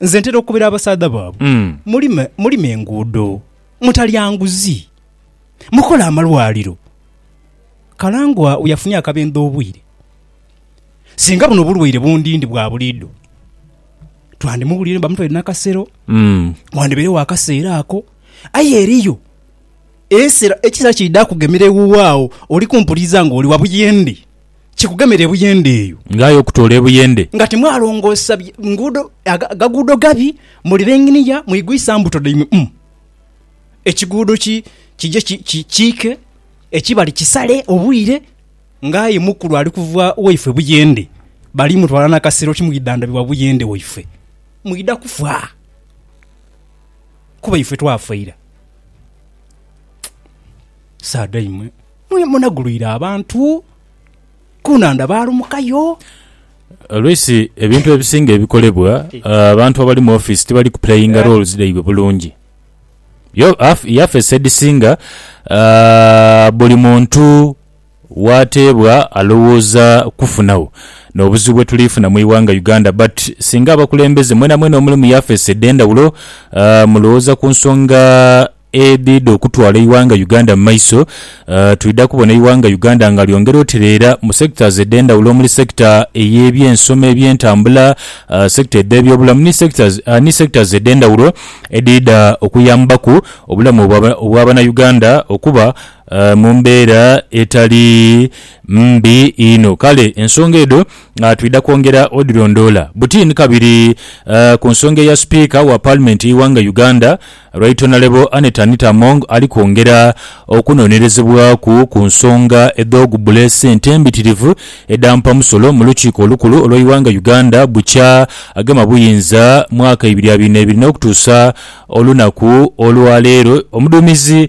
Nze ntera okukobera abasaadha baabwe, mulime, mulime enguudo, mutalya nguzi, mukole amalwaliro. Kalangwa we yafunye akabendhe obwire. Singa buno obulwaire bundindi bwa buliidho, twandimuwulire bamutwaire nakasero, wandibairegho akaseera ako. Aye eriyo esera, ekiseera kiidha kugemera ewuwo agho, oli kumpuliriza nga oli wa buyende. kikugemera ebuyende eyo. Nga aye okutoola ebuyende. Nga timwalongoosa nguudo, agaguudo gabi, mulira enginiya, mwigwisa mbuto dhaimwe mu ekiguudo ki, kije kiike, ekibali kisale obwire, nga aye mukulu ali kuva waifwe buyende, balimutwala na kasero timwidhandhabibwa buyende waifwe. Mwidha kufa, kuba ife twafa ira. Saada imwe! Munagulwire abantu ku nhandha baalumukayo. Oluisi ebintu ebisinga ebikolebwa abantu abali mu ofiisi tibali kupuleyinga roles dhaibwe bulungi. Yafeesi edhisinga buli muntu w'ateebwa alowooza kufunagho. N'obuzibu bwe tuli funa mu ighanga Uganda but singa abakulembeze mwenamwena omuli mu yafeesi edh'endhawulo mulowooza ku nsonga. Edhidha okutwala eighanga Uganda mu maiso, twidha kubona eighanga Uganda nga lyongera otereera mu sectors edhendhawulo omuli sector eyebyensoma, ebyentambula, sector edhebyobulamu ni sectors ni sectors edhendhawulo edhidha okuyambaku obulamu obwa bana Uganda okuba mu mbeera etali mbi inho. Kale ensonga edho twidha kwongera odhilondoola buti ni kabiri ku nsonga eya Speaker wa Parliament yeighanga Uganda, Right Honourable Annet Anita Among ali kwongera okunonerezebwaku ku nsonga edh'ogubbula esente embitirivu edha mpamusolo mu lukiiko olukulu olw'eighanga Uganda bukya agema buyinza mwaka ibiri abiri n'ebiri n'okutuusa olunaku olwaleero omuduumizi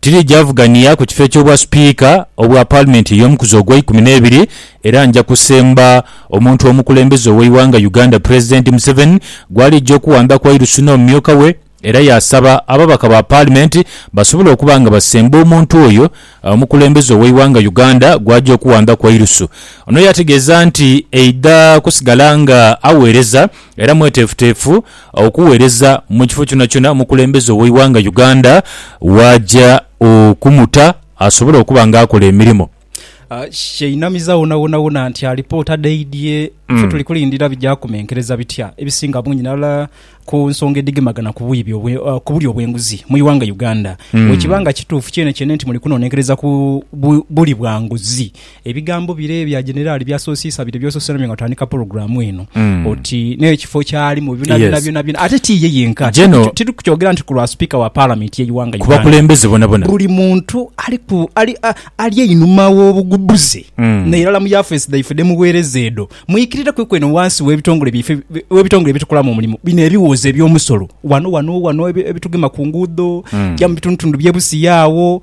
Tiriidhi avugania ku kifo eky'obwa Sipiika obwa Paalimenti ey'omukuzi ogwa ikumi n'ebiri era nja kusemba omuntu omukulembeze ow'eighanga Uganda Pulezidenti Museveni gw'aliija okuwamba Kwairusu n'omumyuka we era yaasaba ababaka ba Paalimenti basobole okuba nga basemba omuntu oyo omukulembeze ow'eighanga Uganda gw'aja okuwamba Kwairusu. Ono yategeeza nti aidha kusigala nga aweereza Era mweteefuteefu okuweereza mu kifo kyonakyona omukulembeze ow'eighanga Uganda w'aja okumuta asobole okuba nga akola emirimo. Kyeinamiza wonawonawona nti alipoota dhaidhie ffe tuli kulindira bigya kumenkereza bitya ebisinga bungi nala ku nsonga edhigemagana ku bwibi obwe, ku bulya obwenguzi mu ighanga Uganda. Bwekiba nga kituufu kyenekyene nti muli kunonenkereza ku bu, bulyi bwa nguzi, Ebigambo bire ebya Generali byasosiisa bire byosose nabyo nga otandika pulogulaamu eno oti n'ekifo kyalimu byonabyona byonabyona ate ti ye yenka tiri kukyogera nti ku lwa sipiika wa Palamenti y'eighanga Uganda bakulembeze bonabona buli muntu ali einhuma w'obugubuze nairala mu yafeesi dhaife dhemuweereza edho mwikirireku ku eno wansi w'ebitongole byaife w'ebitongole byetukolamu omulimu bino ebiwoozo eby'omusolo wano wano wano ebitugema ku nguudo ja mu bitundutundu bye Busia awo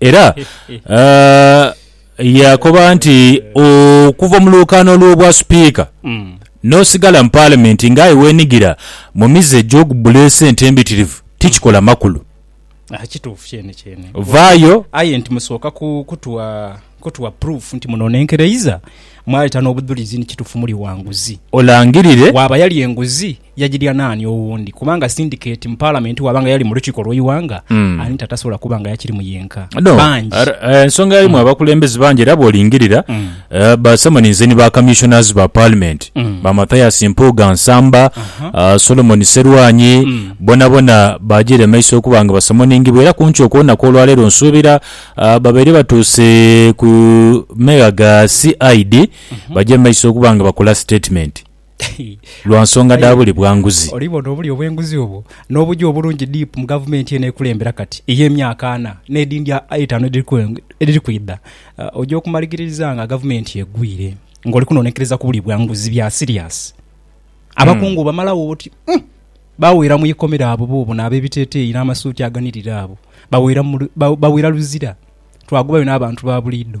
Era yaakoba nti okuva mu lwokaano lw'obwa Sipiika n'osigala mu Palamenti ng'aye weenigira mu mize egy'okubbula esente embitirivu tikikola makulu. Kituufu kyene kyene. Vaayo. Aye nti musooka kutuwa proof nti muno nenkereiza, mwaleeta n'obudhulizi nti kituufu muli wa nguzi. Olangirire. Waaba yali enguzi. Yagirya naani owundi? Kubanga sindikeeti mu Palamenti waaba nga yali mu lukiiko lw'eighanga, ani tatasobola kuba nga yakirimu yenka? Bangi. Ensonga yalimu abakulembeze bangi era bw'olingirira basamaninze ni ba Commissioners ba Palimenti, ba Mathias Mpuuga Nsamba, Solomon Sserwanyi, bonabona baajiire mu maiso okuba nga basamoningibwa era kumpi okwonakwo olwaleero nsuubira babaire batuuse ku megha ga CID baje mu maiso okuba nga bakola sitetimenti. lwa nsonga dha bule bwa nguzi. Olibona obulyo bw'enguzi obwo n'obugya obulungi DIP mu gavumenti eno ekulembera kati ey'emyaka ana n'edhindi eitaanu edhiri kwidha, oja okumaligiririza nga gavumenti egwire ng'oli kunonekereza ku bulyo bwa nguzi bya siriasi. Abakungu obamalagho oti umm! Baweera mu ikomera abo boobona ab'ebiteteeyi n'amasuuti aganirira abo, baweera luzira. Twagubayo n'abantu ba buliidho.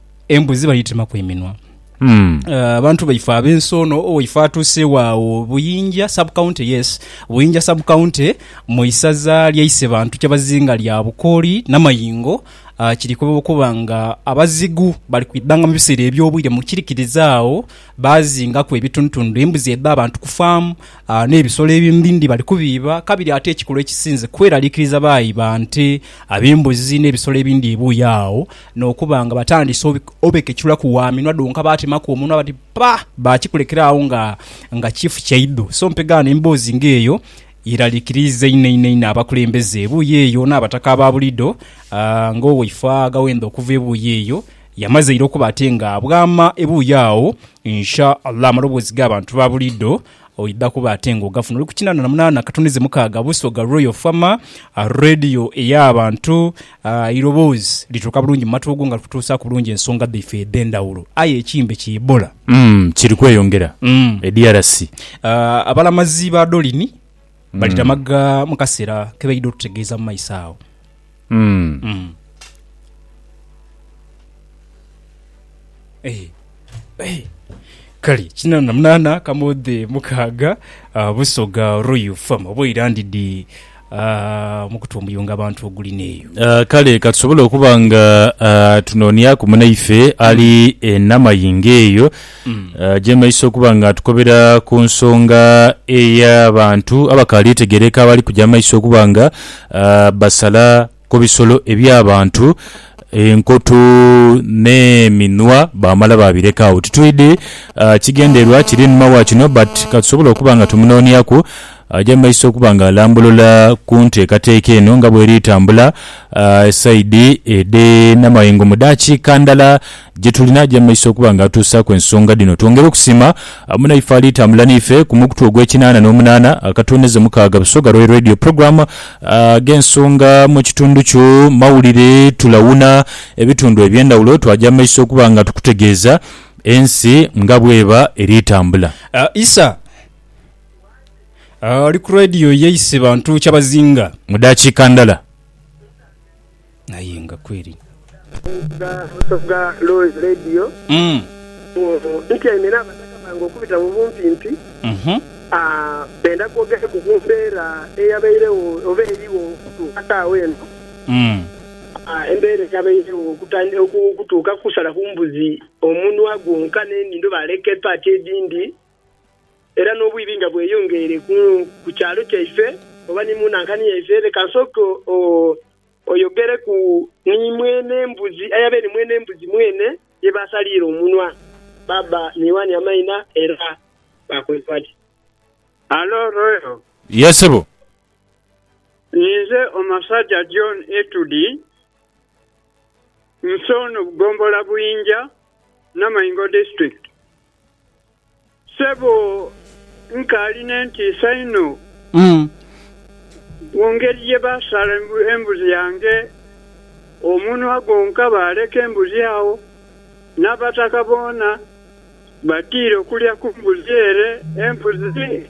Embuzi badhitemaku eminwa. Abantu baife ab'ensi ono, owaife atuuseewo agho Buyinja sub county, yes, Buyinja sub county mu isaza lya Isebantu kyabazinga lya Bukooli Namayingo, kiri kwebaba okuba nga abazigu bali kwidhanga mu biseera eby'obwire mu kirikiriza agho baazingaku ebitundutundu, embuzi edh'abantu ku faamu n'ebisolo ebindhindhi bali kubiiba. Kabiri ate ekikulu ekisinze kweraliikiriza baayiba nte, ab'embuzi n'ebisolo ebindhi ebuuyi agho N'okuba nga batandise obekeculaku wa minwa dhonka baatemaku omunwa bati ppa! Baakikulekera agho nga nga kifu kyaidho. So mpegaano emboozi nga eyo yeralikiriiza inho inho inho abakulembeze ebuuyi eyo n'abataka aba bulido nga owaifaa Gawenda okuva ebuuyi eyo yamaze ira okuba ate nga bwama ebuuyi agho Insha Allah amaloboozi g'abantu ba bulido Oidha kuba ate nga ogafuna oli ku kinaana na munaana akatunize mukaaga Busoga Royal Farmer, Radio ey'abantu, eiroboozi lituuka bulungi mu matu go nga likutuusaaku bulungi ensonga dhaife edh'endhawulo. Aye ekimbe ki Ebola. Kiri kweyongera e DRC. Abalamazi ba Dolini bali Damaga mu kaseera ke baidha otutegeeza mu maiso agho. Kale kinana na munana kamodhe mukaaga Busoga Royal Farm oba oira ndidhi mukutu omuyungo abantu ogulina eyo. Ah, kale katusobole okuba nga ah, tunonyaku munaife ali enamayingo eyo Eh, gyemaiso okuba nga tukobera ku nsonga ey'abantu abakaali etegeereka abali kuja amaiso okuba nga ah, basala ku bisolo eby'abantu enkoto n'eminwa baamala baabireka agho. Titwidhi ah, kigendererwa kiri einhuma wa kino but katusobole okuba nga tumunooniaku aje mu maiso okuba nga alambulula ku nteekateeka eno nga bweri tambula ah, esayidi edh'e Namayengo mu daakiika ndala gye tuli n'aja mu maiso okuba nga atuusaaku ensonga dhino. Twongere okusiima munaife alitambula n'ife ku mukutu ogw'ekinaana n'omunaana akatooneza mukaaga Busoga Royal Radio Program ag'ensonga mu kitundu kyo mawulire. Tulawuna ebitundu eby'endhawulo twaja mu maiso okuba nga tukutegeeza ensi nga bw'eba eri tambula. Isa ali ku Radio yaise bantu kyabazinga. Mu daakiika ndala. Aye nga kweri. Omuvuga Musoga Loyz Radio ono ntyaime n'abataka bange okubita mu bumpimpi benda kwogereku ku mbeera eyabairegho oba erigho okutuuka saagha eno. Embeera eyabairegho okutuuka kusalaku mbuzi omunwa gwonka n'enindho baaleka epaati edhindi Era n'obwibi nga bweyongeire ku kyalo kyaife oba ni mu nankani yaife, leka nsooke oyogereku ni mwene mbuzi, aye abe ni mwene mbuzi mwene ye baasaliire omunwa, baaba ni Yoani amaina, era baakoze bati. Halo, Royal. Yee, ssebo. Ninze omusaja John Etudi, Musono Gombola Buinja Namaingo District. Sebo nkaali n'entiisa inho mu ngeri ye baasaala embuzi yange omunwa gwonka baaleka embuzi agho n'abataka boona batiira okulya ku mbuzi ere embuzi.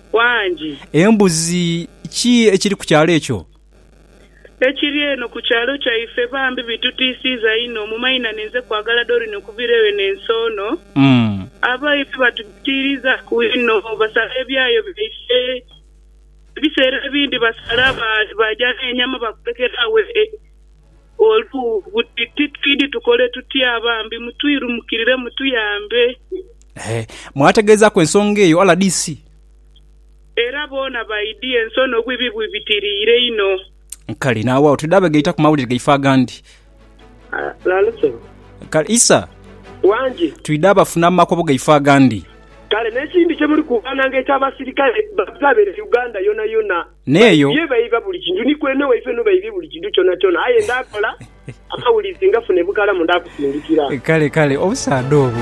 wangi. Embuzi, Ki ekiri ku kyalo ekyo? Ekiri eno ku kyalo kyaife bambi bitutiisiiza inho. Mu mainhane nze kwagala Doreen okuvira eyo n'ensi ono. Abaife batutiiriizaaku inho, basala ebyayo byaife. Ebiseera ebindi basala baaja n'enyama bakulekera agho. Olwo buti ti twidhi tukole tutya? Bambi mutwirumukirire mutuyambe. He, mwategeezaaku ensonga eyo rdc? Era boona baidhi, ensono n'obuibi bwibitiriire inho. Kale, n'aghagho twidha begaita ku mawulire gaife agandi. Nalusolo. Kale, Isa. Wangi. Twidha bafuna mu makobo gaife agandi. Kale, n'ekindi kye muli kuukananga eky'abasirikale bababeere Uganda yonayona. N'eyo. Baibye baiba buli kintu, ni kwene waife no baibye buli kintu kyonakyona. Aye ndaakola amawulire ngafune bukalamu ndaakusindikira. Kale, kale, obusaadha obwo!